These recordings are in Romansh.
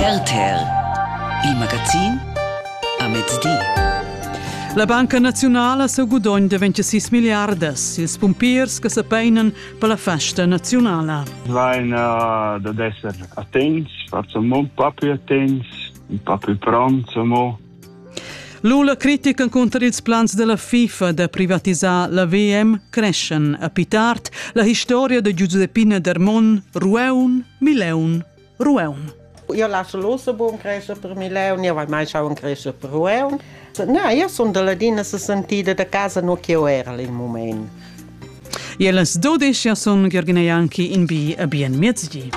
RTL, il magazin a mezdi. La Banca Naziunala seu gudogn de 26 miliardas, ils pumpiers che se peinen per la festa nazionala. Vain uh, ad esser attents, facciamo un po' più attents, un po' più pronti, mo Lula critica cunter ils plans della FIFA da privatisar la VM creschan a più tard la historia de Giuseppina Dermon Rueun Mileun Rueun. Eu lasso Luxemburg crescer per Mileun, eu vai mai schauen crescer per Rueun. No, eu sunt della dina se sentida da casa no che eu era in moment. Ie las dodischia sun Giergina Janki in bi a bien miezgi.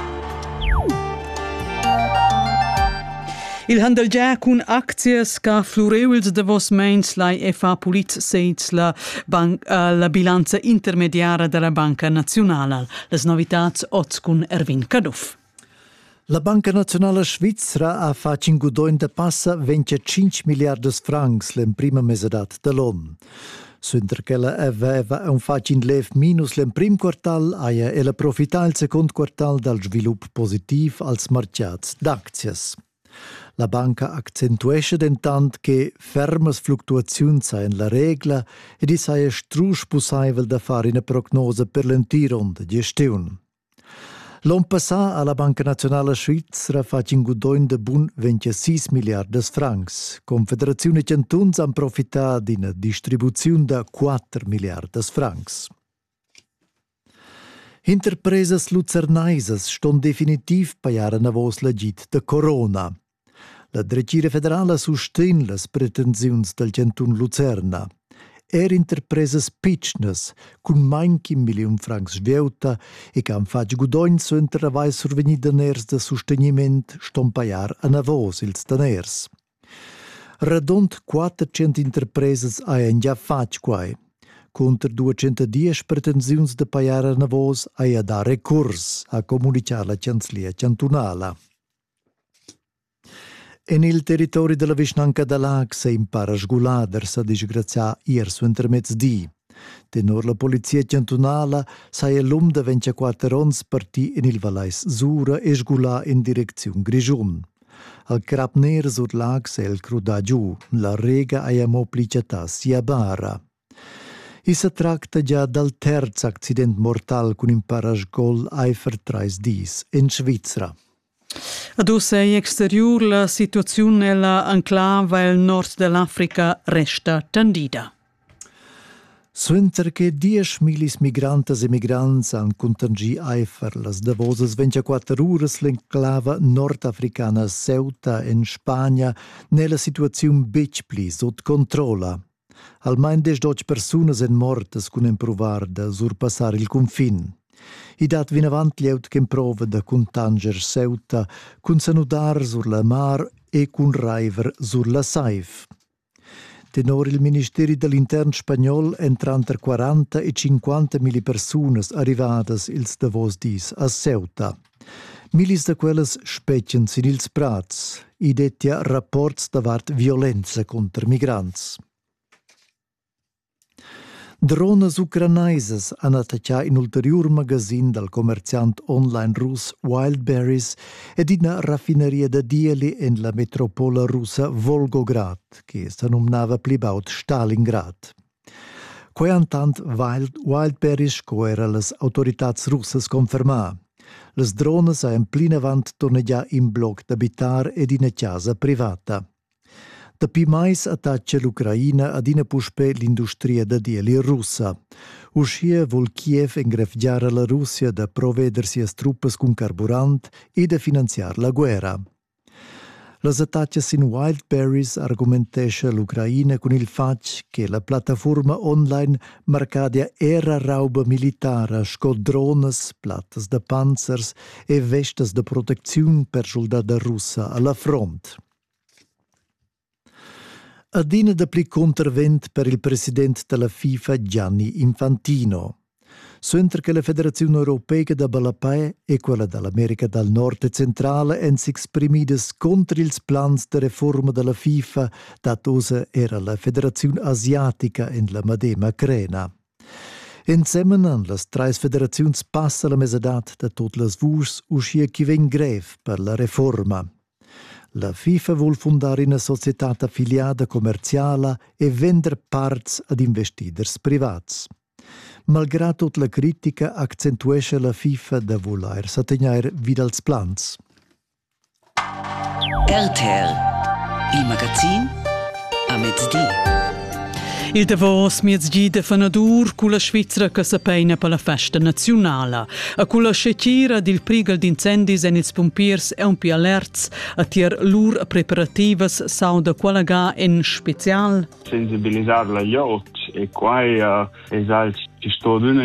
Il handel già cun aczias ca flurevels davos meins lai e fa pulit seits la, banc, uh, la bilanza intermediara della Banca Nazionala. Les novitats oz cun Erwin Caduff. La Banca Naziunala Svizra ha fatg in gudogn da passa 25 milliardas francs l'emprima mesadad da l'on. Suenter ch'ella aveva un fatg in lev minus l'emprim quartal, haja ella profità il secund quartal dal svilup positiv als martgads d'aczias. La banca accentuescha dentant che fermas fluctuaziuns sajan la regla ed i saja strusch pussaivel da far ina prognosa per l'entir onn da gestiun. L'on passà ha la Banca Nazionala Svizra fatg in gudogn da bun 26 milliardas francs. Confederaziun e chantuns han profità d'ina distribuziun da 4 milliardas francs. Interpresas lucernaisas ston definitiv pajar anavos l'agid da corona. La dretgira federala sustegn las pretensiuns dal chantun Lucerna. Er interpresas pitschnas cun main ch'in milliun francs vieutta e che han fatg gudogn suenter avair survegnì daners da sustegniment ston pajar anavos ils daners. Radund 400 interpresas hajan già fatg quai. Cunter 210 pretensiuns da pajar anavos haja dà recurs, ha communitgà la chanzlia chantunala. En il territori dalla vischnanca da Laax è in para sgulader sa disgrazià ier suentermezdi. Tenor la polizia chantunala saja l'um da 24 onns partì en il Valais Sura e sgulà in direcziun Grischun. Al crap ner sur Laax è el crudà giu. La rega haja mo pli chattà sia bara. I sa tracta gia dal terz accident mortal cun in parasgol aifer trais dis en Svizra. Ad uss è exteriur la situaziun ella enclava el nord dell'Africa resta tendida. Suenter che diesch millis migrantas e migrants han contingì aifer las davosas 24 uras l'enclava nordafricana Ceuta en Spagna n'è la situaziun betg pli sut controlla. Almain deschdotg persunas èn mortas cun empruvar da surpassar il cunfin. I dat vinavant glieud ch'emprova da cuntanscher Ceuta cun sanudar sur la mar e cun raiver sur la saiv. Tenor il ministeri da l'intern spagnol èn tranter 40 e 50 milli persunas arrivadas ils davos dis a Ceuta. Millis da quellas spetgan sin ils prads. I dettia rapports davart violenza cunter migrants. Dronas ucranaisas han attaccà in ulteriur magasin dal commerziant online russ Wildberries ed ina raffinaria da dieli en la metropola russa Volgograd, che sa numnava pli baud Stalingrad. Quei entant Wild Wildberries sco era las autoritads russas confermar. Las dronas han plinavant turnegià in bloc d'abitar ed ina casa privata. Dapi mais attaccia l'Ucraina adina puspè l'industria da dieli russa. Uschia vul Kiev engrevgiar la Russia da proveder sias truppas cun carburant e da finanziar la guerra. Las attacas in Wildberries argumentescha l'Ucraina cun il fatg che la plattafurma online marcadia era rauba militara sco dronas, plattas da panzers e vestas da protecziun per schuldada russa a la front. Adina dapli cuntervent per il president dalla FIFA Gianni Infantino. Suenter che la Federaziun europeica da ballapei e quella dall'America dal Nord e Centrale èn s'exprimidas contr ils plans da reforma dalla FIFA, dat ossa era la Federaziun asiatica en la madema crena. Ensemen han las treis federaziuns passa la mesadad da tot las vuschs uschia chi vegn grev per la reforma. La FIFA vul fundar ina societad affiliada commerziala e vender parts ad investiders privats. Malgrà tut la critica accentuescha la FIFA da vulair sa tegnair vi dals plans. RTL, il magazin a mezgi. Il davos miezgi de fanadur culla Svizra che sa peina per la festa naziunala. A culla scetira dil prigal d'incendis en ils pumpiers è un pi alerts a tier lur preparativas sauda quella ga en special. Sensibilisar la jot e quai uh, es alch chi sto adüna